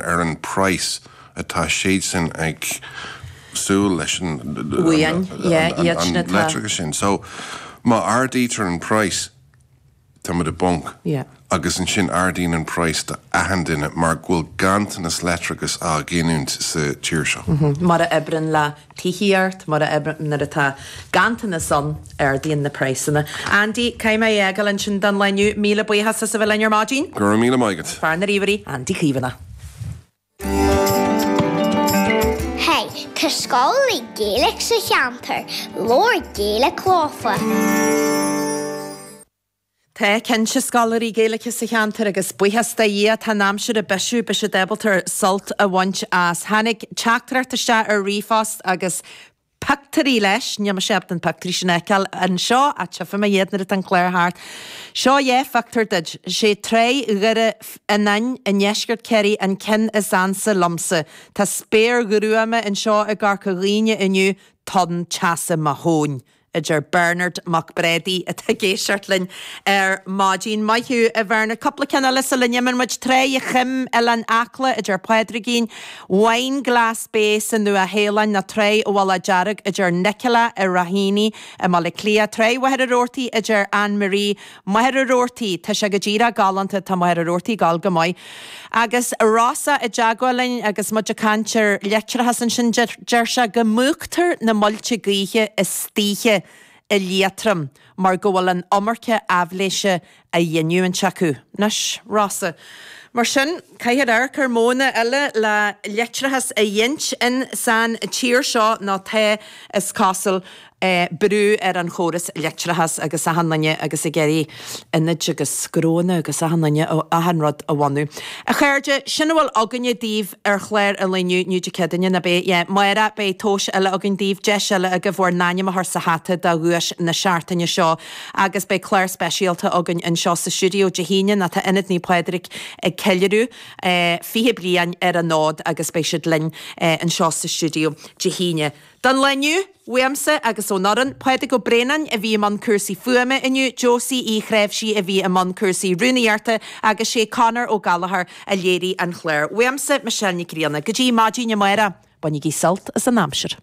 ar an praghas atá siadsan ag súil leis an Bhuíon, yeah, iad sin atá. leictreachas sin. So, má ardaítear an praghas, táimid i bponc. Yeah. Agus ansin ardaíonn an praghas d'achan duine mar go bhfuil ganntanas leictreachais á ghiniúint sa tír seo. Mar a oibreann le tithíocht mar a nuair atá ganntanas ann ardaíonn na praghsanna. Andy, caithfidh mé a fhágáil ansin don lá inniu. Míle buíochas as a bheith linn ar maidin. Go raibh míle maith agat. Fear na ríomhairí, Andy Caomhánach. Hey, tá scoláirí Gaeilge sa cheantar, labhair Gaeilge leofa! Tá cinnte scoláirí Gaeilge sa cheantar agus buíochas do Dhia tá an aimsir ag bisiú beidh siad ábalta sult a bhaint as. Tháinig teachtaireacht isteach ar ríomhphost agus pictiúirí leis, níl mise ábalta na pictiúirí sin a fheiceáil anseo ach tchífidh mé iad nuair atá an clár thart. Seo dhá phictiúr duid. Is é Tráigh Dhoire Fhíonáin i ndeisceart Chiarraí an ceann is ansa liomsa. Tá spéir ghruama anseo i gCorca Dhuibhne inniu, tonn teasa mo thóin. a deir Bernard Mac Brádaigh atá ag éisteacht linn ar maidin. Maith thú a Bhernard. Cúpla ceann eile sula n-imíonn muid. Tráigh a' Choim, Oileán Acla, a deir Pádraigín, Wineglass Bay sa Nua Shéalainn, ná Tráigh a' Mhullaigh Dearg a deir Nicola i Raheny i mBaile Cliath, Tráigh Mhachaire Rabhartaigh a deir Ann Marie, Machaire Rabhartaigh, tá sé go díreach galánta, tá Machaire Rabhartaigh gal go maith. Agus Rossa i dteagmháil linn agus muid ag caint ar leictreachas ansin, deir sé go múchtar na muilte gaoithe istoíche i Liatroim mar go bhfuil an iomarca aibhléise á ghiniúint acu. Anois, Rossa, mar sin, caithfear amharc ar mhodhanna eile le leictreachas a ghint in san tír seo ná tá, is cosúil. brú ar an chóras leictreachas agus achan duine agus ag iarraidh ionaid agus gnónna agus achan duine, achan rud a bhunú. A chairde, sin a bhfuil againne daoibh ar chlár eile inniu, inniu Dé Céadaoine, nab é? Yeah. Amárach, beidh tomhas eile againn daoibh, deis eile agaibh bhur n-ainm a chur sa hata do dhuais na seachtaine seo agus beidh clár speisialta againn anseo sa stiúideo Dé hAoine ná tá Ionad Naomh Pádraig ag ceiliúradh 20 bliain ar an fhód agus beidh siad linn anseo sa stiúideo Dé hAoine. Don lá inniu, uaimse agus ón fhoireann, Pádraig Ó Braonáin a bhí i mbun cúrsaí fuaime inniu, Josie Uí Chnáimhsí a bhí i mbun cúrsaí rúnaíochta agus sé Conor Ó Gallchóir a léirigh an chlár. Uaimse, Michelle Nic Grianna. Go dtí maidin amárach, bainigí sult as an aimsir.